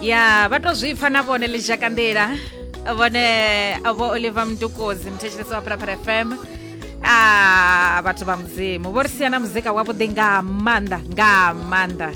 ya vha to zwi pfa na vhone ḽi dzhaka nḓila vhone vho oliver mdukozi muthetshelesi wa phalaphala fm a ah, vhathu vha mudzimu vho ri sia na muzika wavhuḓi nga maanḓa nga maanḓa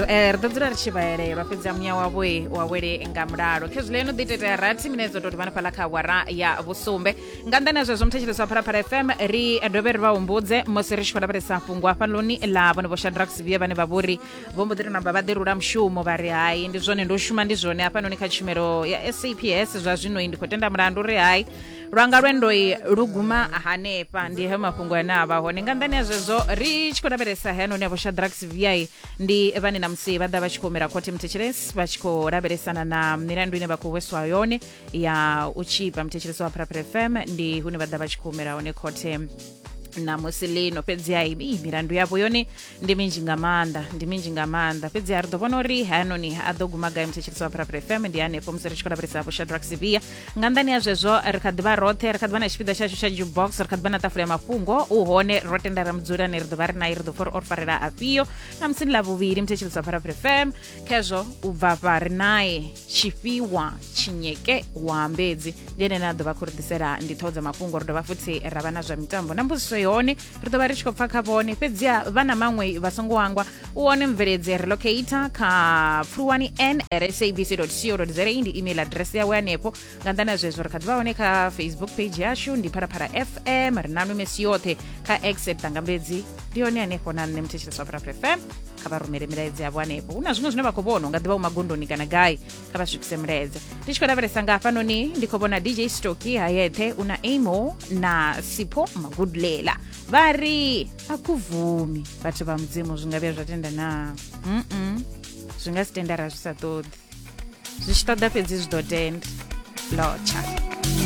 eh, ri ḓo dzula ri tshi vhaelelwa fhedzi a muya wavho wa wele nga mulalo khezwi ḽeno ḓi itetea rathi mine dzo tou ri vhanafhaḽa kha awara ya vhusumbe nga nḓani ya zwezwo muthetshelesi wa phalaphala fm ri dovhe ri vha humbudze musi ri tshi khou lavhelesa fhungo hafhanoni ḽa vhone vho shadrax via vhane vha vhori vho mbo ḓi ri namba vha ḓi rula mushumo vha ri hai ndi zwone ndo shuma ndi zwone hafhanoni kha tshumelo ya saps zwa zwinoi ndi khou tenda mulandu ri hai lwanga lwendoi lu guma hanefha ndi he mafhungo ane a vha hone nga nḓani ya zwezwo ri tshi khou lavhelesa hanoni a vhoshadrax vi ndi vhane na musi vha ḓa vha tshi khou humela khothe mthetshelesi vha tshi khou lavhelesana na milandu ine vha khou hweswa yone ya u tshipa mthetshelesi wa pharapara fm ndi hune vha ḓa vha tshi khou humela hone khothe na musi lino fhedzi hai milandu yavho yone ndi minzhi nga maanḓa ndi minzhi nga maanḓa fhedzi ha ri ḓo vhona uri hayanoni a ḓo guma gai muthetshelisi wa pharapara fm ndi hanefho musi ri tshi khou lavhelesa vho shadrack sivia nga nḓani ha zwezwo ri kha ḓivha roṱhe ri kha ḓivha na tshipiḓa tshashu tsha jukebox ri kha ḓivha na ṱafula ya mafhungo u hone ro tenda ra mudzulani ri ḓo vha ri naye ri ḓo pfa uri o ri farela afhio na musini ḽa vhuvhili muthetshelisi wa pharapara fm khezwo u bva fha ri naye tshifhiwa tshinyeke wa mbedzi ndi ene ane a ḓo vha khou ri ḓisela ndi ṱhoho dza mafhungo ri dovha futhi ra vha na zwa mitambo na mbudziso yone ri ḓo vha ri tshi khou pfa kha vhone fhedziha vha na maṅwe vha songo angwa u wane mveledzi relocator kha pfuluwani n sabc co za ndi email address yawe hanefho nga nḓani ya zwezwo ri kha ḓi vha hone kha facebook page yashu ndi pharapara fm ri nanu mesi yoṱhe kha except angambedzi ndi hone hanefho na nṋe mthetsheleswa pharapara fm kha vha rumele milaedzi yavho hanefho hu na zwiṅwe zwine vha khou vhona u nga ḓi vha u magondoni kana gai kha vha swikise muleze ndi tshi khou lavhelesa nga hafhanoni ndi khou vhona dj stoki hayethe una amo na sipho magudulela vha ri a ku vumi vhathu vha mudzimu zwi nga vhuya zwa tenda na mm zwi nga si tendara zwi sa ṱoḓi zwi tshi ṱoḓa fhedzi zwi ḓo tenda lotsha